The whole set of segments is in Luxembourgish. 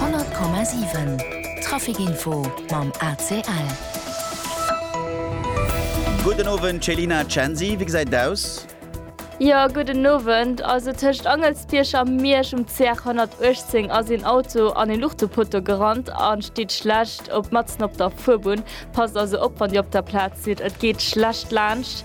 100,7 Traficinfo mam ACL. Gudden Owend Céline a Chanzy, wéi gesäit et aus? Jo, gudden Owend. Also tëscht Angelsbierg a Miersch um CR 118 ass een Auto an e Luuchtepotto gerannt a steet schlecht op matzen op der Fuerbunn. Passt also op, wann Dir op der Plaz sidd, et geet schlecht laanscht.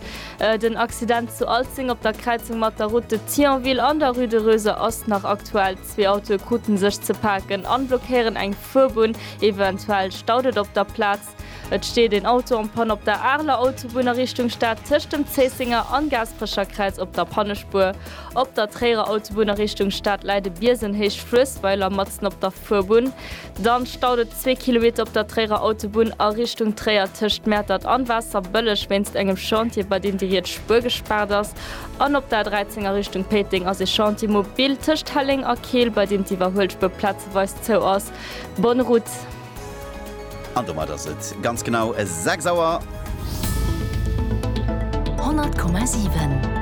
Den Accident zu Alzeng op der Kräizung mat der Route de Thionville an der Rue de Reuser ass nach aktuell. Zwee Autoe kruten sech ze paken an blockéieren eng Fuerbunn. Eventuell staut et op der Plaz. Et steet een Auto en panne op der Areler Autobunn a Richtung Stad tëscht dem Zéissenger an Gaasperecherkräiz op der Pannespuer. Op der Tréierer Autobunn a Richtung Stad läit e Biesen héicht Fluessweiler matzen op der. Fuerbunn, dann staut et zwee Kilometer op der Tréierer Autobunn a Richtung Tréier tëscht Mäertert an Waasserbëlleg wéinst engem Chantier bei deem déi riets Spuer gespaart ass an op der A13 a Richtung Péiteng ass ee Chantier mobil tëscht Helleng a Keel bei deem d'Iwwerhuelspuer plazeweis zou ass. Bonne route. An domat ass et ganz genau 6 Auer. 100,7.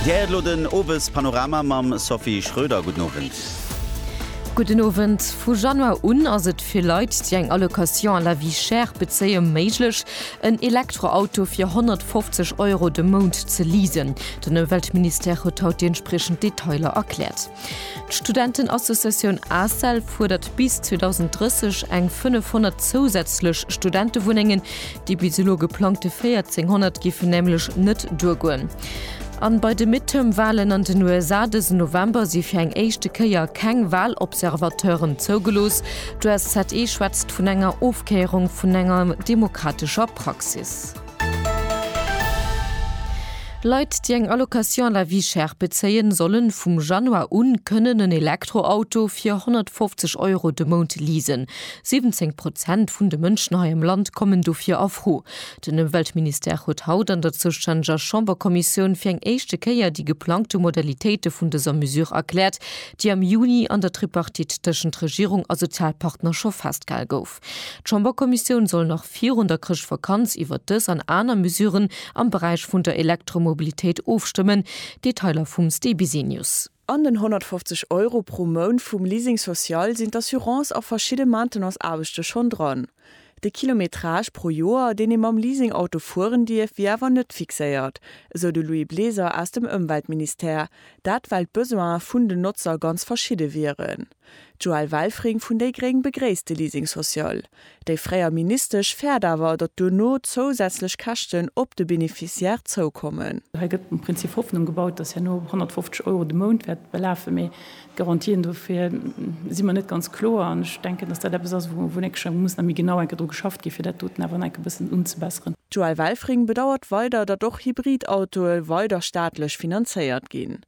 Dir héiert elo den Owespanorama mam Sophie Schröder. Gudden Owend. Gudden Owend. Vu Januar un ass et fir Leit, déi eng Allocation à la vie chère bezéie méiglech, en Elektroauto fir 150 Euro de Mount ze leasen. Den Ëmweltministère huet haut déi entspriechend Detailer erkläert. D'Studentenassociatioun ACEL fuerdert bis 2030 eng 500 zousätzlech Studentewunnengen. Déi bis elo geplangte 1400 géifen nämlech net duergoen. An bei de Midterm-Walen an den USA dësen November si fir eng éischte Kéier keng Walobservateuren zougelooss. D'USZE schwätzt vun enger Ofkéierung vun enger demokratescher Praxis. Leit, déi eng Allocation à la vie chère bezéien, solle vum Januar u kënnen en Elektroauto fir 150 Euro de Mount leasen. 17 Prozent vun de Mënschen hei am Land kommen dofir a Fro. Den Ëmweltministère huet haut an der zoustänneger Chamberkommissioun fir eng éischte Kéier déi geplangte Modalitéite vun dëser Mesure erkläert, déi am Juni an der Tripartite tëschent Regierung a Sozialpartner scho festgehal gouf. Fest. D'Chamberkommissioun soll nach virun der Chrëschtvakanz iwwert dës an aner Mesuren am Beräich vun der Elektromobilitéit ofstëmmen. Detailer vum Stéi Bisenius. An den 150 Euro pro Mount vum Leasing social sinn d'Assurance a verschidde Maintenance-Aarbechte schonn dran. De Kilometrage pro Joer, deen ee mam Leasing-Auto fueren dierf, wier awer net fixéiert, esou de Louis Bleser aus dem Ëmweltministère. Dat well d'Besoine vun den Notzer ganz verschidde wieren. D'Joëlle Welfring vun déi gréng begréisst de Leasing social. Déi fréier Ministesch fäert awer, datt duerno zousätzlech Käschten op de Beneficiaire zoukommen. Hei gëtt um Prinzip Hoffnung gebaut, datt herno 150 Euro de Mount wäert belafen, mee d'Garantien dofir si mer net ganz kloer. An ech denken, datt dat eppes ass, wou en enke muss nach méi genau enke dru geschafft ginn, fir dat doten awer nach enke bëssen unzebesseren. D'Joëlle Welfring bedauert weider, datt och Hybrid-Autoe weider staatlech finanzéiert ginn.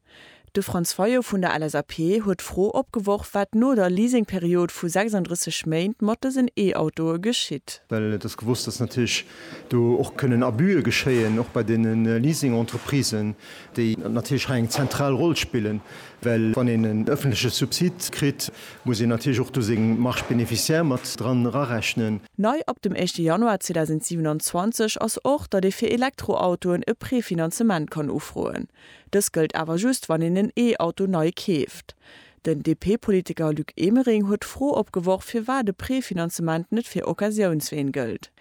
De Franz Fayot vun der LSAP huet d'Fro opgeworf, wat no der Leasingperiod vu 36 Méint mat dësen E-Autoe geschitt. Well et ass gewosst, datt natierlech do och kënnen Abuse geschéien, och bei deene Leasing-Entreprisen, déi natierlech hei eng zentral Roll spillen. Well wann een en ëffentleche Subsid kritt, muss een natierlech och do seng Marges bénéficiaires mat dran erarechnen. Nei ab dem éischte Januar 2027 ass och, datt ee fir Elektroautoen e Prefinanzement kann ufroen. Dës gëllt awer just, wann een en E-Auto nei keeft. Den DP-Politiker Luc Emering huet d'Fro opgeworf, firwat e Prefinanzement net fir Occasiounsween gëllt.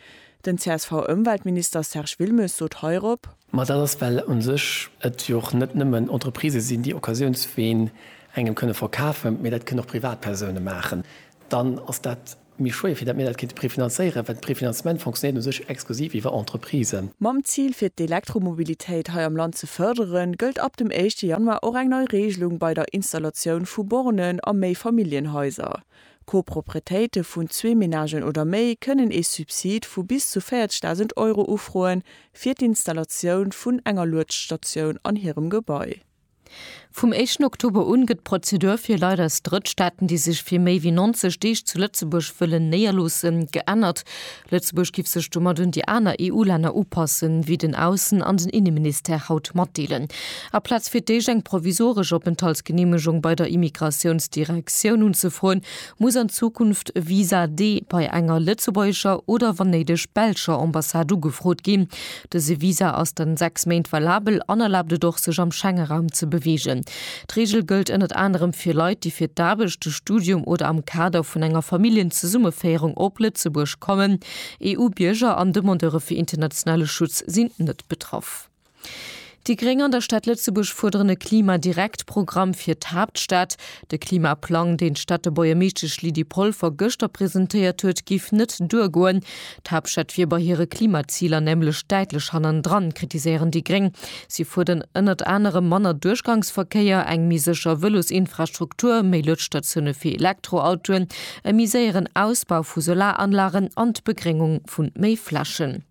Den CSV-Ëmweltminister Serge Wilmes sot heirop. Ma dat ass, well u sech et jo och net nëmmen Entreprisë sinn, déi Occasiounsween engem kënne verkafen, mee dat kënnen och Privatpersoune maachen. Dann ass dat. Mir schwéie fir, datt mir dat kéinte prefinanzéieren, well d'Prefinanzement fonctionnéiert u sech exklusiv iwwer Entreprisen. Mam Zil fir d'Elektromobilitéit hei am Land ze fërderen, gëllt ab dem éischte Januar och eng nei Reegelung bei der Installatioun vu Bornen a Méifamilljenhaiser. Coproprietéite vun zwee Menagen oder méi kënnen ee Subsid vu bis zu 40.000 Euro ufroen, fir d'Installatioun vun enger Luedstatioun an hirem Gebai. Vum éischten Oktober un gëtt d'Prozedur fir Leit aus Drëttstaaten, déi sech fir méi wéi 90 Deeg zu Lëtzebuerg wëllen néierloossen, geännert. Lëtzebuerg giff sech domat un déi aner EU-Länner upassen, wéi den Aussen an den Inneministère haut matdeelen. Aplaz fir d'éischt eng provisoresch Openthaltsgeneemegung bei der Immigratiounsdirektioun unzefroen, muss an Zukunft e Visa D bei enger lëtzebuergescher oder wann néideg belscher Ambassade ugefrot ginn. Dëse Visa ass dann 6 Méint valabel an erlaabt et och, sech am Schengeraum ze beweegen. D'Reegel gëllt ënnert anerem fir Leit, déi fir d'Aarbecht, de Studium oder am Kader vun enger Familljenzesummeféierung op Lëtzebuerg kommen. EU-Bierger an Demandeure fir internationale Schutz sinn net betraff. Déi Gréng an der Stad Lëtzebuerg fuerderen e Klima-Direkt-Programm fir d'Haaptstad. De Klimaplang, deen d'Stadtebuergermeeschtesch Lydie Polfer gëschter presentéiert huet, géif net duergoen. D'Haaptstad wier bei hire Klimaziler nämlech däitlech hannendran, kritiséieren déi Gréng. Si fuerderen ënnert anerem manner Duerchgangsverkéier, eng méi sécher Vëlosinfrastruktur, méi Luedstatioune fir Elektroautoen, e méi séieren Ausbau vu Solaranlagen an d'Begréngung vu méi Flächen.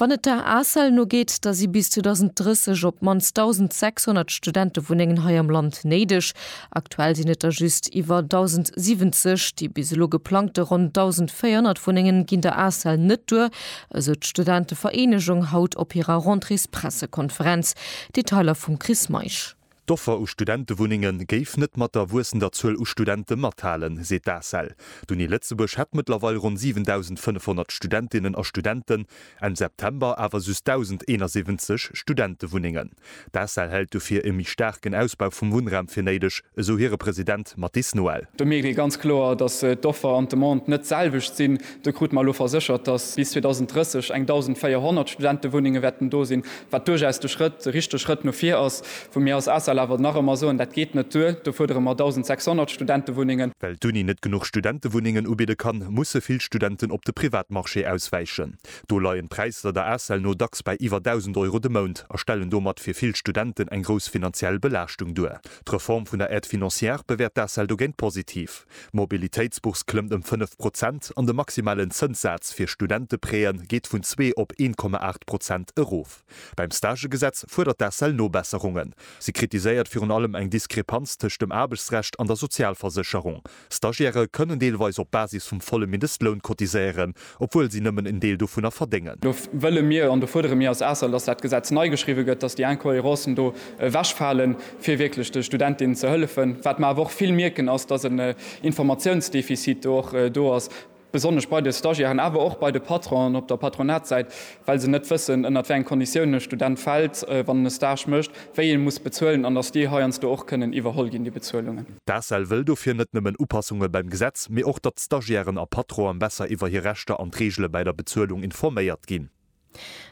Wann et der ACEL no geet, da si bis 2030 op d'mannst 1.600 Studentewunnengen hei am Land néideg. Aktuell sinn et der just iwwer 1.070. Déi bis elo geplangte ronn 1.400 Wunnengen ginn der ACEL net duer, esou d'Studentevereenegung haut op hirer Rentrées-Pressekonferenz. Detailer vum Chris Meisch. D'Offer u Studentewunnenge géif net mat der wuessender Zuel u Studente mathalen, seet d'ACEL. D'Uni Lëtzebuerg hätt mëttlerweil ronn 7.500 Studentinnen a Studenten, Enn September awer just 1.071 Studentewunnengen. D'ACEL hält dofir e méi staarken Ausbau vum Wunnraum fir néideg, esou hire President Mathis Noel. Do mierkt ee ganz kloer, datt d'Offer an d'Demande net d'selwecht sinn. Do krute mer elo verséchert, dass bis 2030 eng 1.400 Studentewunnenge wäerten do sinn, wat duerchaus de Schrëtt, de richtege Schrëtt no vir ass. Wou mir als ACEL awer nach ëmmer soen, dat geet net duer, do fuerdere mer 1.600 Studentewunnengen. Well d'Uni net genuch Studentewunnengen ubidde kann, musse vill Studenten op de Privatmarché auswäichen. Do leien d'Präisser der ACEL no dacks bei iwwer 1.000 Euro de Mount a stellen domat fir vill Studenten eng grouss finanziell Belaaschtung duer. D'Reform vun der Aide financière bewäert d'ACEL dogéint positiv. D'Mobilitéitsbourse klëmmt ëm 5 Prozent an de maximalen Zënssaz fir Studenteprêtë geet vun zwee op 1,8 Prozent erof. Beim Stagegesetz fuerdert d'ACEL Nobesserungen. Si kritiséiert virun allem eng Diskrepanz tëscht dem Aarbechtsrecht an der Sozialversécherung. Stagiairë kënnen deelweis op Basis vum volle Mindestloun cotiséieren, obwuel si nëmmen en Deel dovunner verdéngen. Do wëlle mir an do fuerdere mir als ACEL, dass dat Gesetz nei geschriwwe gëtt, dass déi Incohérencen do ewechfalen, fir wierklech de Studentinnen ze hëllefen. Wat mer awer och vill mierken, ass, dass en Informatiounsdefizit do och do ass, besonnesch bei de Stagiairen, awer och bei de Patronen op der Patronatssäit, well se net wëssen, ënnert wéi eng Konditiounen e Student fält, wann en e Stage mécht, wéi ee muss bezuelen an dass déi heiansdo och kënnen iwwerholl ginn, déi Bezuelungen. D'ACEL wëll dofir net nëmmen Upassunge beim Gesetz, mee och, datt Stagiairen a Patronen besser iwwer hir Rechter an d'Reegele bäi der Bezuelung informéiert ginn.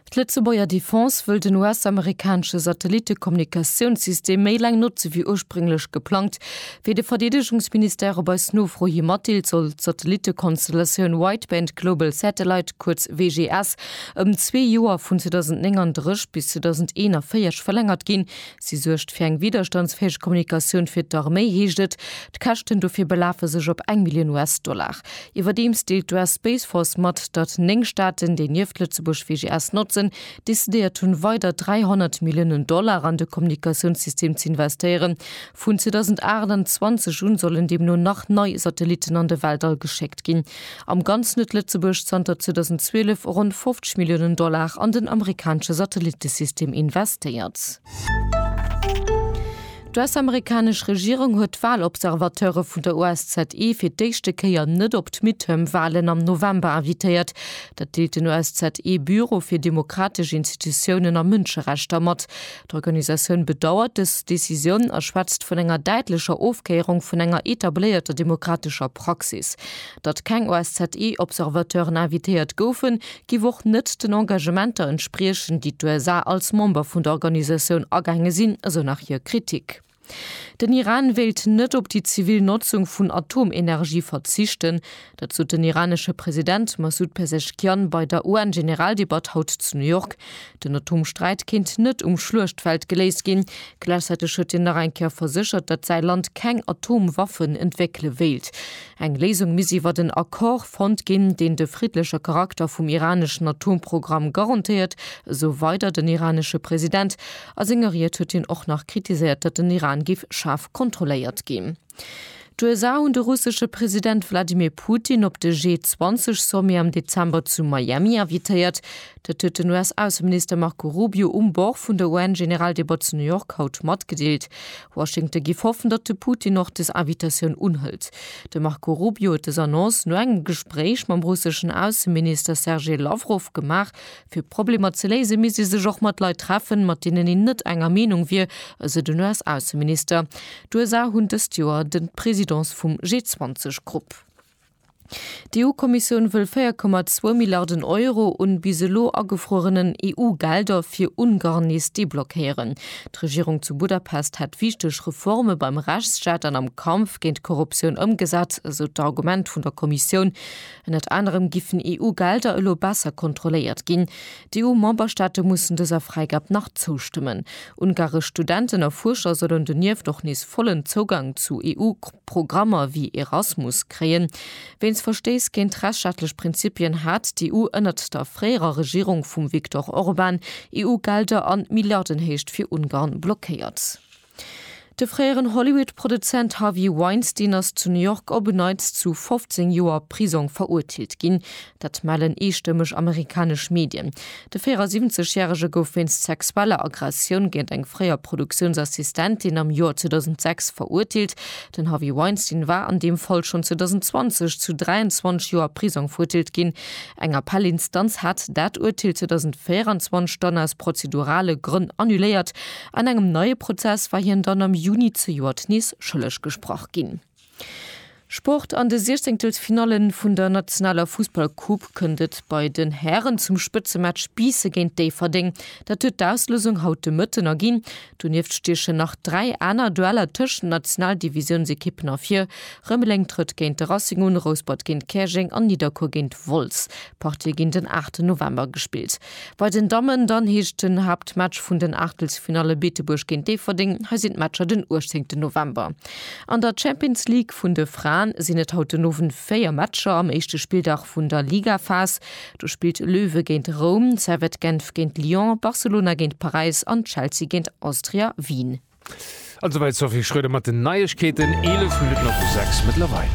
D'Lëtzebuerger Defense wëll den US-amerikanesche Satellitte-Kommunikatiounssystem méi laang notze wéi ursprénglech geplangt. Wéi de Verdeedegungsministère op eis Nofro hi matdeelt, soll d'Satellitte-Konstellatioun Wideband Global Satellite, kuerz WGS, ëm zwee Joer, vun 2039 bis 2041, verlängert ginn, Si suergt fir eng widderstandsfäeg Kommunikatioun fir d'Arméi, heescht et. D'Käschten dofir belafe sech op eng Millioun US-Dollar. Iwwerdeems deelt d'US Space Force mat, datt néng Staaten, déi nieft Lëtzebuerg WGS notzen, decidéiert hunn, weider 300 Milliounen Dollar an de Kommunikatiounssystem ze investéieren. Vun 2028 un sollen deemno nach nei Satellitten an de Weltall geschéckt ginn. Am Ganzen huet Lëtzebuerg zanter 2012 ronn 50 Milliounen Dollar an den amerikanesche Satellittesystem investéiert. D'US-amerikanesch Regierung huet d'Walobservateure vun der OSZE fir d'éischte Kéier net op d'Midterm-Walen am November invitéiert. Dat deelt den OSZE-Büro fir demokratesch Institutiounen a Mënscherechter mat. D'Organisatioun bedauert dës Decisioun a schwätzt vun enger däitlecher Ofkéierung vun enger etabléierter demokratescher Praxis. Datt keng OSZE-Observateuren invitéiert goufen, giff och net den Engagementer entspriechen, déi d'USA als Member vun der Organisatioun agaange sinn, esou nach hir Kritik. Den Iran wéilt net op déi zivil Notzung vun Atomenergie verzichten. Dat sot den iranesche President Massoud Pezeshkian bei der UN-Generaldebatt haut zu New York. Den Atomsträit kéint net um Schluechtfeld geléist ginn. Gläichzäiteg huet hien nach eng Kéier verséchert, datt säi Land keng Atomwaffen entwéckele wéilt. Eng Léisung misst iwwert en Accord fonnt ginn, deen de friddleche Charakter vum iraneschen Atomprogramm garantéiert, esou weider den iranesche President. A senger Ried huet hien och nach kritiséiert, datt den Iran géif schaarf kontrolléiert ginn. D'USA hunn de russesche President Wladimir Putin op de G20-Sommet am Dezember zu Miami invitéiert. Dat huet den US-Ausseminister Marco Rubio um Bord vun der UN-Generaldebat zu New York haut matgedeelt. Washington géif hoffen, datt de Putin och des Invitatioun unhëlt. De Marco Rubio huet dës Annonce no engem Gespréich mam russeschen Ausseminister Sergei Lawrow gemaach, Fir Problemer ze léisen, misst ee sech och mat Leit treffen, mat deenen een net enger Meenung wier, esou den US-Ausseminister. D'USA hunn dëst Joer de d'Presidence vum G20-Grupp. D'EU-Kommissioun wëll 4,2 Milliarden Euro un bis elo agefruerenen EU-Gelder fir Ungarn nees deblockéieren. D'Regierung zu Budapest hätt wichteg Reforme beim Rechtsstaat an am Kampf géint d'Korruptioun ëmgesat, esou d'Argument vun der Kommissioun. Ënnert anerem giffen EU-Gelder elo besser kontrolléiert ginn. D'EU-Memberstaate mussen dëser Fräigab nach zoustëmmen. Ungaresch Studenten a Fuerscher sollen donieft och nees vollen Zougang zu EU-Programmer wéi Erasmus kréien. Wéinst Verstéiss géint rechtsstaatlech Prinzipien hat d'EU ënnert der fréierer Regierung vum Viktor Orban EU-Gelder an Milliardenhéicht fir Ungarn blockéiert. De fréieren Hollywood-Produzent Harvey Weinstein ass zu New York op en Neits zu 15 Joer Prisong verurteelt ginn. Dat mellen eestëmmeg amerikanesch Medien. De 74 järege gouf wéinst sexueller Aggressioun géint eng fréier Produktiounsassistentin am Joer 2006 verurteelt. Den Harvey Weinstein war an deem Fall schonn 2020 zu 23 Joer Prisong verurteelt ginn. Eng Appellinstanz hat dat Urteel 2024 dann aus prozedurale Grënn annuléiert. An engem neie Prozess war hien dann am Juni zejoert nees schëlleg gesprach ginn. Sport, An de Siechzehnktelsfinalle vun der nationaler Fussballcoupe kënnt et bei den Hären zum Spëtzematch Biisse géint Déifferdeng. Dat huet d'Auslousung haut de Mëtten erginn. Donieft stiechen nach dräi aner Dueller tëscht den Nationaldivisiounsekippen ervir. Rëmeleng trëtt géint de Racing un, Rouspert géint Käerjeng an Nidderkuer géint Wolz. D'Partie ginn den 8 November gespillt. Bei den Dammen dann heescht den Haaptmatch vun den Aachtelsfinalle Beetebuerg géint Déifferdeng. Hei sinn d'Matcher den 18 November. An der Champions League vun de Fraen sinn et haut den Owend 4 Matcher am éischte Spilldag vun der Ligaphas. Do spillt Löwe géint Roum, Servette Genf géint Lyon, Barcelona géint Paräis an Chelsea géint Austria Wien. An esouwäit d'Sophie Schröder mat den Neiegkeeten, 11 Minutten op de 6 mëttlerweil.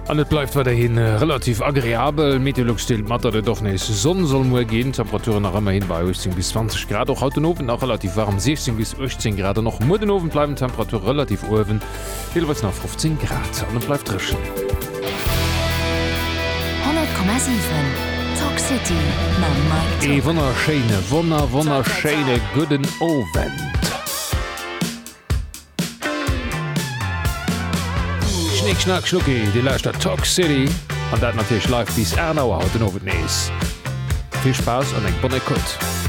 An et bleift weiderhi äh, relativ agreabel. Meteolux deelt mat, datt et och nees Sonn soll muer ginn. Temperaturen nach ëmmer hin bei 18 bis 20 Grad. Och haut den Owend nach relativ warm 16 bis 18 Grad. An och muer den Owend bleiwen Temperature relativ uewen. Deelweis nach 15 Grad an et bleift dréchen. 100,7 Talk City mam Mike Ee Top. wonnerschéine, wonner, wonnerschéine gudden Owend. Schnick, Schnack, Schnucki, Dir lauschtert d'Talk City an dat natierlech live bis 8 Auer haut den Owend nees. Vill Spaass an eng bonne Écoute.